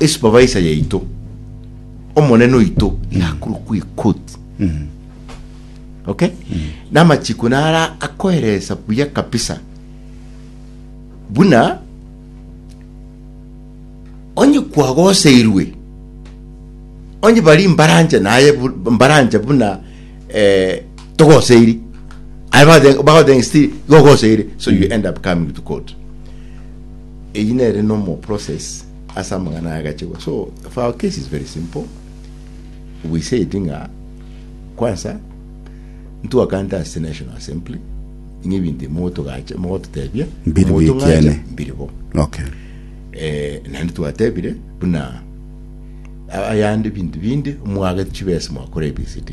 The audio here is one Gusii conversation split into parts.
Esupervisor yaito, omonene oito yakorokwa ekoti. Okay? Namachiiko nara akoeresa buya kabisa buna onye kwagoseirwe onye bari mbarancha naye bu- mbarancha buna eh, togoseiri aye bagothe- bagothenga still igo ogoseire so you end up coming to court Eyio nere normal process ase amang'ana aya agachegwa. So for our case is very simple. We said ng'a kwansa ntwakante ase National Assembly ng'a ebinto motogacha mogototebia Mbiri bi motong'acha ekiene. mbiri bo. Okay. Eh, naende twatebire buna a- ayande bintu binde mwagete chibesa mwakora ABCD.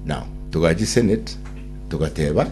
Now togachi Senate togateba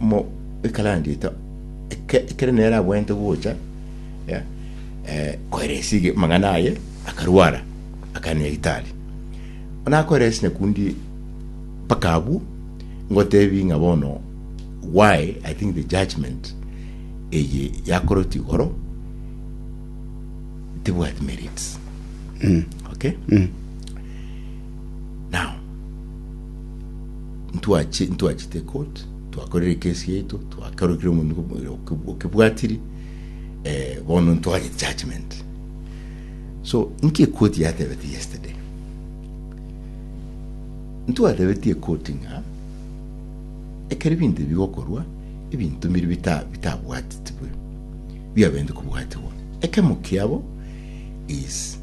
mo ekalandi eto eke- ekero nere abwenerete gocha ya, eh, koeresi ege- amang'ana aye akarwara akagenda nyagetari nakoeresi nyakundi mpaka abwo ngotebi ng'a bono why i think the judgment eye yakorotwe igoro tebwati merits okay Now, ntwachi- ntwachete court twakorire ekesi yaito twakorokire omonto oke- okebwatiri eh, bono ntware judgment so inki ekoti yatebete yesterday ntwatebetie ekoti ng'a ekero ebinto ebi bigokorwa ebinto mbiri bita- bitabwatitwe biabente kobwatigwa ekemo kiabo is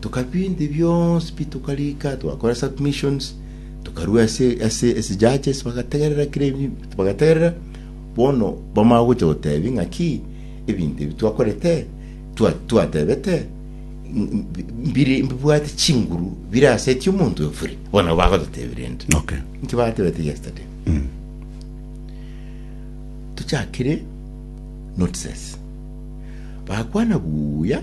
Tokabinto ebi bionsi pi tokarika, twakora submissions, tokarua ase ase ase judges bagategerera kira ebi bagategerera. Bono bamara gocha gotebi ng'aki ebinto ebi twakorete twa twatebete ng- ng- mbiri mbibwate chinguru bire ase eti omonto efuri. Bono bagototebire ento. Okay. Nki batebete yesterday? Tochakire notices. Bakwana buya